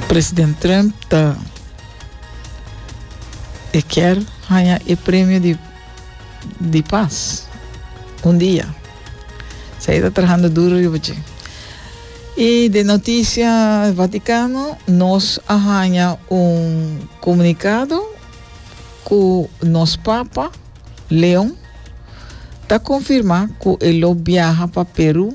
President Trump ta e kier haña e premio di di pas un dia. Sa e ta trahando duro riba dje. I de noticia Vaticano nos a haña un comunicado cu nos Papa Leon ta confirma cu e lo biaha pa Peru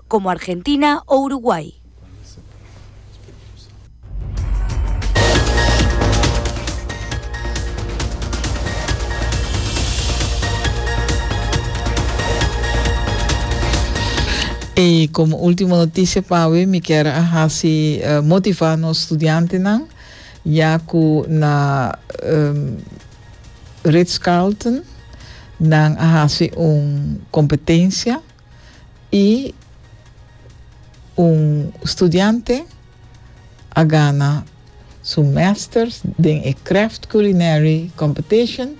komo Argentina o Uruguay. I komo ultimo notisia pa awe mi kier a hasi motiva nos studiantenan ya ku na Ritz Carlton nan a hasi un kompetensia. y un studiante a gana su Masters den e Craft Culinary Competition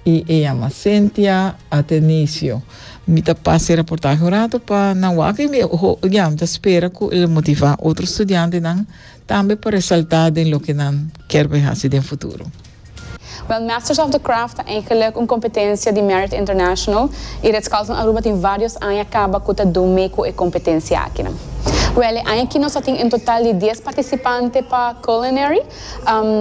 y e yama Cynthia Atenisio. Mi ta pasa e raportahe un rato pa nan wak y mi ya mi ta spera cu el motiva otro studiantenan Tambe pa resaltá den loke nan ker bai hasi den futuro. Wèl, Masters of the Craft ta eigenlik un kompetensia di Merit International i Ritz Carlton Aruba tin vários aña kaba ku ta dun mee ku e kompetensia akinan. Wèl, e aña aki nos a tin un total di dies partisipante pa Culinary,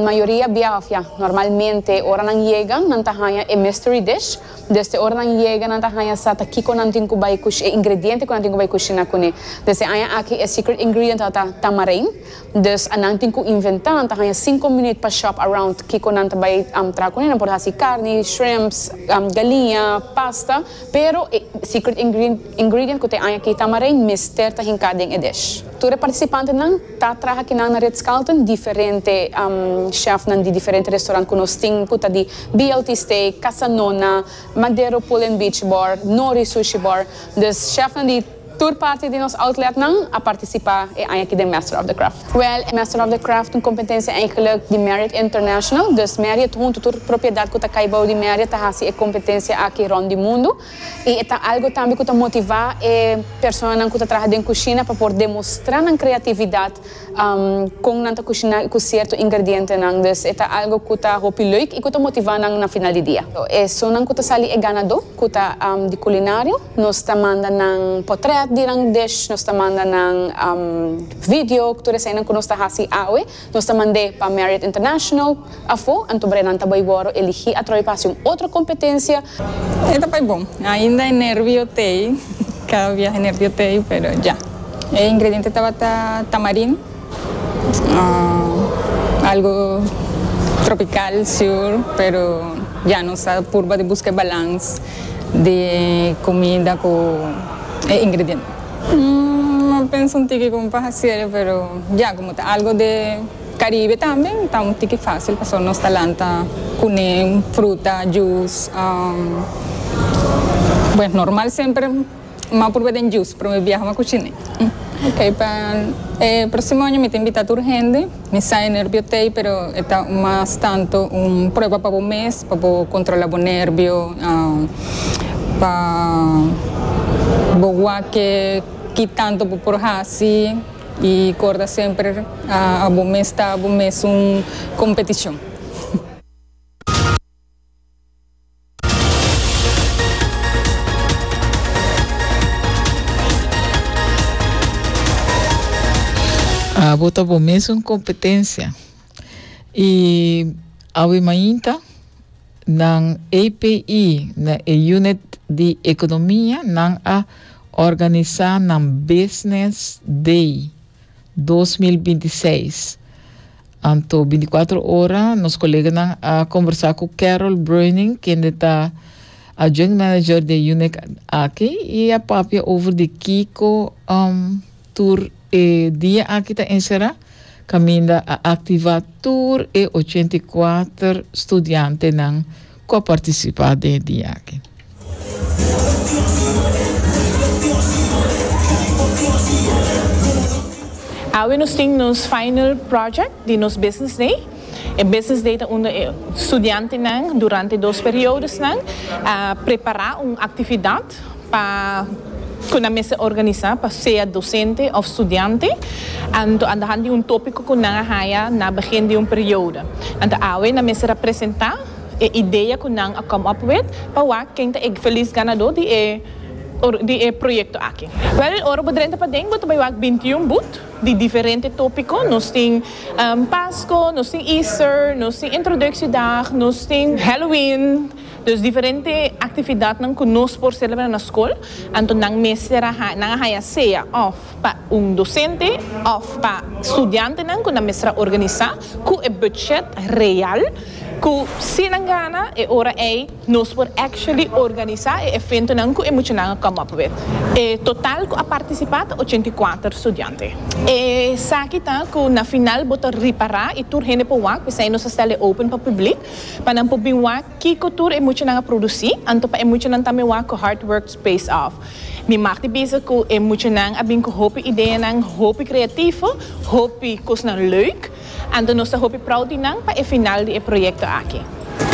mayoria biaha òf ya normalmente ora nan yega nan ta haña e Mystery Dish, Desde ora nan yega nan ta haña sa ta kiko nan tin ku bai kush, e ingrediente ku nan tin ku bai kushina kuné. Desde aña aki e secret ingredient ora ta tamarind, dus a nan tin ku inventá, nan ta haña sinku minüt pa shop around kiko nan ta bai traha kuné, nan por hasi karni, shrimps, galiña, pasta, pero e secret ingredient ku ta aña aki tamarind mester ta hinká den e dish. Tur e partisipantenan Ta traha aki nan na Ritz Carlton diferente chefnan di diferente restaurant cu nos tin cu ta di BLT Steak, Casa Nona, Madero Pool and Beach Bar, Nori Sushi Bar. Dus chefnan di tur parti di nos outletnan a participa e aña aki den Master of the Craft. Wel, e Master of the Craft un competencia eigenlijk di Marriott International. Dus Marriott hunto tur propiedad cu ta cay bou di Marriott ta haci e competencia aki rond di mundo. i e ta algu tambe ku ta motivá e personanan ku ta traha den kushina pa por demostrá nan kreatividat kon nan ta kushiná i ku sierto ingredientenan. Dus e ta algu ku ta hopi leuk i ku ta motivá nan na final di dia. Esunnan ku ta sali e ganadó ku ta di kulinario nos ta manda nan potrèt di nan dish, nos ta manda nan video, tur eseinan ku nos ta hasi awe. Nos ta mand'é pa Marriott International. Afó, anto Brennan ta bai wòrdu eligí atrobe pa hasi un otro kompetensia. E ta bai bon. Ainda e nervio t'ei. Kada biaha e nervio t'ei, pero dja. E ingrediente tabata tamarin, algo tropical, siur, pero dja nos ta purba di buska e balans di e kumida ku e ingrediente. Umm a pensa un tiki como pa hacerlo pero ya como ta algo de Caribe tambe ta un tiki facil pasobra nos ta lanta cunen, fruta, juice umm bueno normal semper ma purba den juice pero mi biaha ma cuchiné. Ok pa e proximo año mi ta invita tur hende. Mi sa e nerbio ta ei pero e ta mas tanto un prueba pa bo mes pa bo controla bo nerbio pa bo wak ki tanto bo por haci y corda semper abo mes ta abo mes un competicion. Abo ta bo mesun competencia. Y awe mainta nan APE na e unit di economia nan a organisa nan business day dos mil binti seis. Anto binticuatro ora nos koleganan a combersa cu Carol Bruining, kende ta Adjunct Manager den unit aki y a papia over di kico um tur e dia aki ta encera caminda a activa tur e ochenta i kuater studiantenan ku a partisipá den e dia aki. Awe nos tin nos final project di nos Business Day. E Business Day ta unda e studiantenan durante dos periodosnan a prepará un aktividat. pa cu nan mester organisa pa sea docente of studiante, anto a tahan di un topico cu nan a haya na begin di un periodo. Anto awe nan mester a presenta e idea cu nan a come up with pa wak ken ta e feliz ganador di e di e proyecto aki. Well, ora bo drenta paden bo ta bay wak binti y un boot di diferente topico, nos tin Pasco, nos tin Easter, nos tin Introductiedag, nos tin Halloween, Dus diferente actividadnan cu nos por celebra na scol, anto nan mester a nan a haya sea of pa un docente of pa studiantenan cu nan mester a organisa cu e budget real cu si nan gana e ora ey nos por actually organisa e eventonan cu e muchanan a come up with. E total cu a participa ta ochenta i kuater studiante. Esaki ta cu na final bo ta ripara y tur hende por wak, p'esey nos a stel e open pa public. Pa nan por bin wak kiko tur e muchanan a produci, anto pa e muchanan tambe wak cu hard work pays off. Mi mag di bisa cu e muchanan a bin cu hopi ideanan hopi creativo, hopi cosnan leuk, anto nos ta hopi proud di nan pa e final di e proyecto aki.